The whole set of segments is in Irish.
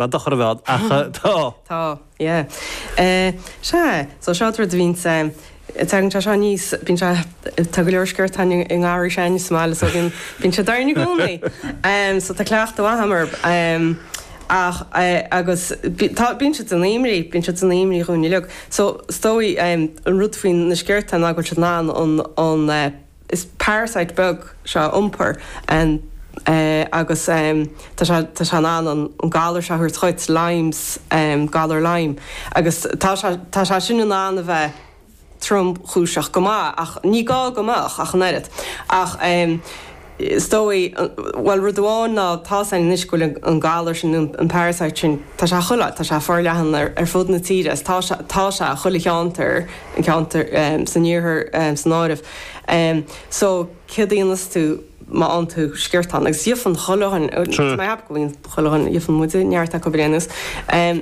Ba dochar a bheadh, ach tá. Tá, yeah. Sea, so seo rud a bhíonns, tagann sé seo níos, bíonn sé, tá go leor sciortáin sa ngarraí 's againne is maith, so bíonn, bíonn sé d'fhoireann i gcónaí. So tá cleachtadh maith a'm air. Ach, agus tá, bíonn siad san aoimrí, bíonn siad san aoimrí dhúinn uilig. So is dóigh, an rud faoi na sciortáin ná go bhfuil siad in ann an, an, An parasite beag seo a iompar agus tá sé in ann an galar seo a thabhairt dhuit, Lyme's, galar Lyme, agus tá sé sin in ann a bheith tromchúiseach go maith ach ní gá go mbeadh ach an oiread. Ach is dóigh, bhuel rud amháin ná tá's againn anois go bhfuil an galar sin, an parasite sin, tá sé chuile áit, tá sé forleathan ar fud na tíre is tá sé i chuile cheantar, An ceantar san iarthar san áireamh. So céard a dhíonas tú má fhaigheann tú sciortán? Agus faigheann chuile dhuine, is maith an seans go bhfaigheann chuile dhuine, faigheann muide neart acu ar aon nós.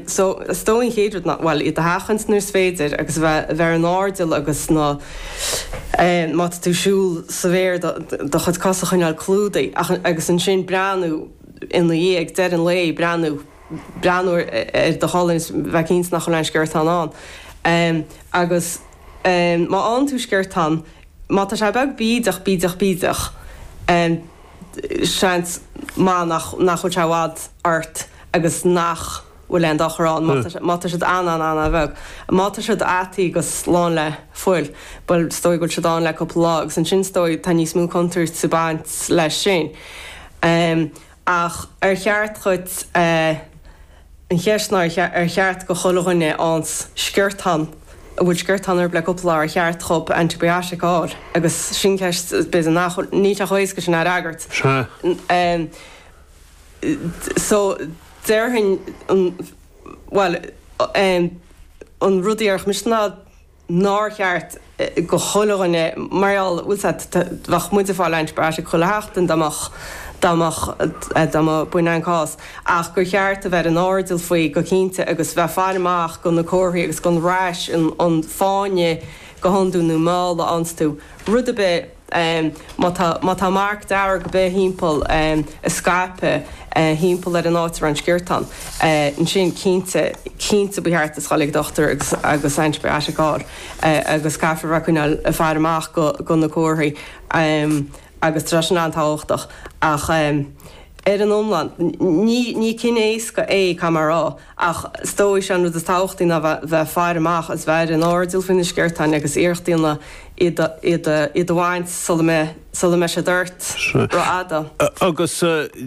So is dóigh an chéad rud ná, bhuel, iad a sheachaint nuair is féidir agus a bheith, a bheith ar an airdeall agus na, má tá tú ag siúl sa bhféar do, do chuid cos a choinneáil clúdaithe ach, agus ansin breathnú ina dhiaidh, ag deireadh an lae, breathnú. breathnú ar do cholainn is a bheith cinnte nach bhfuil aon sciortán ann agus má fhaigheann tú sciortán, má tá sé beag bídeach bídeach bídeach, seans maith nach bhfuil sé i bhfad ort agus nach bhfuil aon dochar ann. Má tá siad an-an-an-an-bheag, má tá siad ataithe agus lán le fuil, bhuel, is dóigh go bhfuil siad ann le cúpla lá agus ansin is dóigh tá níos mó contúirt ag baint leis sin. Ach ar cheart dhuit an cheist ná ar cheart do chuile dhuine a fhaigheanns sciortán, a bhfuil sciortán orthu le cúpla lá ar cheart dhóibh antibiotic a fháil? Agus sin ceist is b'fhéidir nach bhfuil, níl sé chomh héasca sin a fhreagairt. Sea. So déarfainn an, bhuel, an rud a déarfainn mise ná nár cheart do chuile dhuine mar gheall, bhfuil a fhios a'd, bheadh muid ag fáil antibiotic chuile sheachtain dá mbeadh, dá mbeadh, dá mba b'in an cás, ach gur cheart a bheith ar an airdeall faoi go cinnte agus bheith ag faire amach do na comharthaí agus don rash, an fáinne go hiondúil nó má fhaigheann tú rud ar bith. Má tá marc dearg ar bith thimpeall ag scaipeadh thimpeall ar an áit a raibh an sciortán, ansin cinnte, cinnte ba cheart duit a ghoil ag dochtúir agus antibiotic a fháil agus caithfidh muid coinneáil ag faire amach do na comharthaí agus tá sin an-tábhachtach. Ach ar an iomlán, ní cinn éasca é cá mar a raibh. ach is dóigh sé an rud is tábhachtaí ná bheith faire amach is bheith ar an airdeall faoi na sciortáin agus iarracht a dhéanamh iad a bhaint sula mbeidh siad ort rófhada. Agus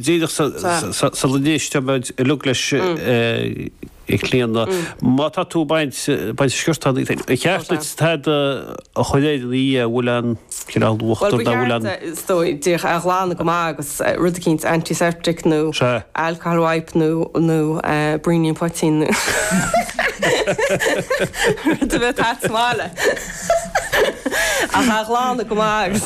díreach sula n-éistfidh muid uilig leis, a Chlíona, má tá tú ag baint sciortán, ar cheart duit tada a chur air ina dhiaidh, an bhfuil aon cineál uachtar nach bhfuil an. is dóigh, díreach é a ghlanadh go maith agus rud eicínt antiseptic nó alcohol wipe nó nó braoinín poitín nó rud a bheadh agat maith le ach a ghlanadh go maith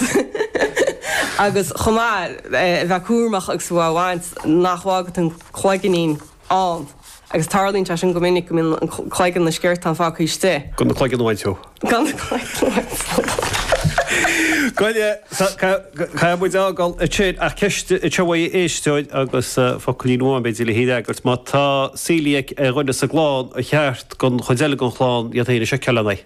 agus agus chomh maith bheith cúramach agus bheith á bhaint nach bhfágann tú an cloiginín ann, agus tarlaíonn sé sin go minic, go mbíonn cloigeann an sciortáin fágtha istigh. Gan an cloigeann a bhaint dó. Gan an cloigeann a bhaint dó. Go dtí so, caithfidh muid é a fhágáil ansin ach ceist sciobtha ó éisteoir agus focailín amháin b'fhéidir le hí a fhreagairt. Má tá coeliac ag duine sa gclann, ar cheart don chuid eile den chlann iad féin a sheiceáil lena aghaidh?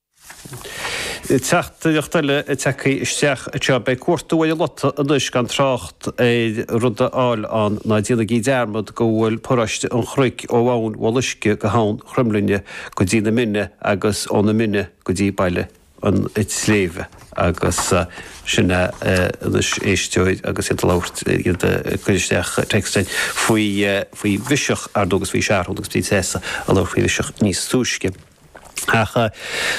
Teachtaireacht eile tagtha isteach anseo, beidh cuartú ar an lota anois gan trácht ar rud a fháil ann ná déanaigí dearmad go bhfuil paróiste an Chnoic ó Abhainn Bhoth Loiscthe go hAbhainn Chromghlinne go dtí na Mine agus ó na Mine go dtí Baile an tSléibhe agus sin é anois éisteoir agus iad ag labhairt iad ag cur isteach téacsanna faoi faoi Biseach ar ndóigh agus faoi shearúil agus bhí Treasa ag labhairt faoi Bhiseach níos túisce. Ach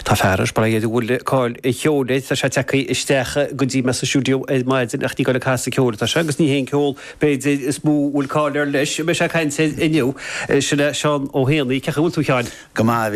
tá fear ar spré a bhfuil cáil an cheoil air, tá sé tagtha isteach go dtí mé sa stiúideo ar maidin ach ní ag goil ag casadh ceoil atá sé agus ní hé an ceol, b'fhéidir, is mó a bhfuil cáil air leis a mbeidh sé ag caint air inniu. Sin é Seán Ó hÉanaí. Cén chaoi a bhfuil tú, a Sheáin? Go maith, a